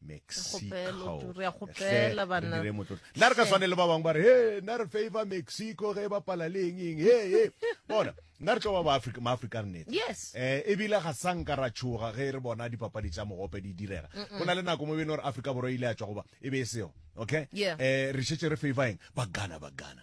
mexico re a kgopela bana re motlo la re ka swane le ba bang ba re he na re favor mexico ge ba pala le eng eng he he bona na re tlo ba ba africa ma africa ne yes eh e bile ga sanka ra tshoga ge re bona dipapadi tsa mogope di direga go na le nako mo beno re africa borwa ile ya tswa goba e be e seo okay eh re shetse re favor eng ba gana ba gana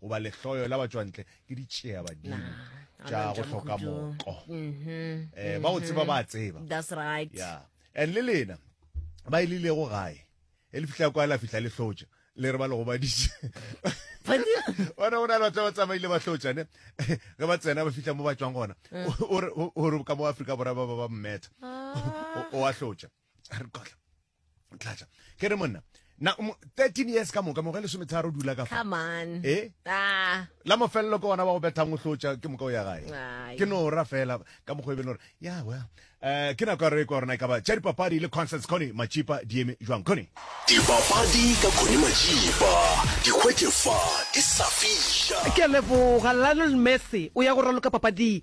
goba lehloyo la batšwantle ke ditšeabadimo tša go hloka moko um ba go tseba ba tseba ya and le lena ba e lilego gae e le fitlha kwa la fihla le hlotša le re ba le gobaditše bona go na le batho ba tsamaile ba hlotša ne ge ba tsena ba fitlha mo ba tswang gona gore mm. ka mo aforika borwa ba ba ba mmetha ah. o a hlotša tlatša ke re monna na 13 years ka moka moga lesome tharo dula ka fa e ah. la mofelelo ke ona wa go bethang o hlotša ke moka o ya gae ke no ra fela ka mokgwa e bene gore ya well um ke nako ya re kwa rona e ka ba tša dipapadi le constance cony machipa di eme jwang cony dipapadi ka cony machipa dikgwetše fa di sa fiša ke a leboga lionel messi o ya go raloka papading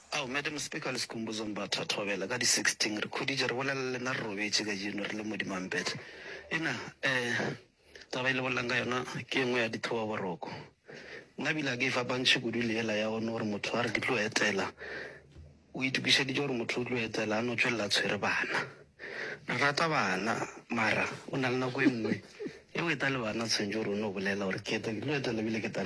Ao, Madam Speaker, le Sekumbuzong ba tha thobela ka di sixteen re khuditše re bolela le lena re robetše kajeno re le mo Dimampete. Ena eh taba e le bolelang ka yona ke engwe ya dithoba boroko. Nna bile a ke e fapantšhe kudu le yela ya ono gore motho a re ke tlo etela o itokišeditše gore motho o tlo etela a no tšwelela a tshwere bana. Re rata bana mara o na le nako e nngwe eo e ta le bana tshwentše gore o no bolela gore ke eta ke tlo etela bile ke ta le.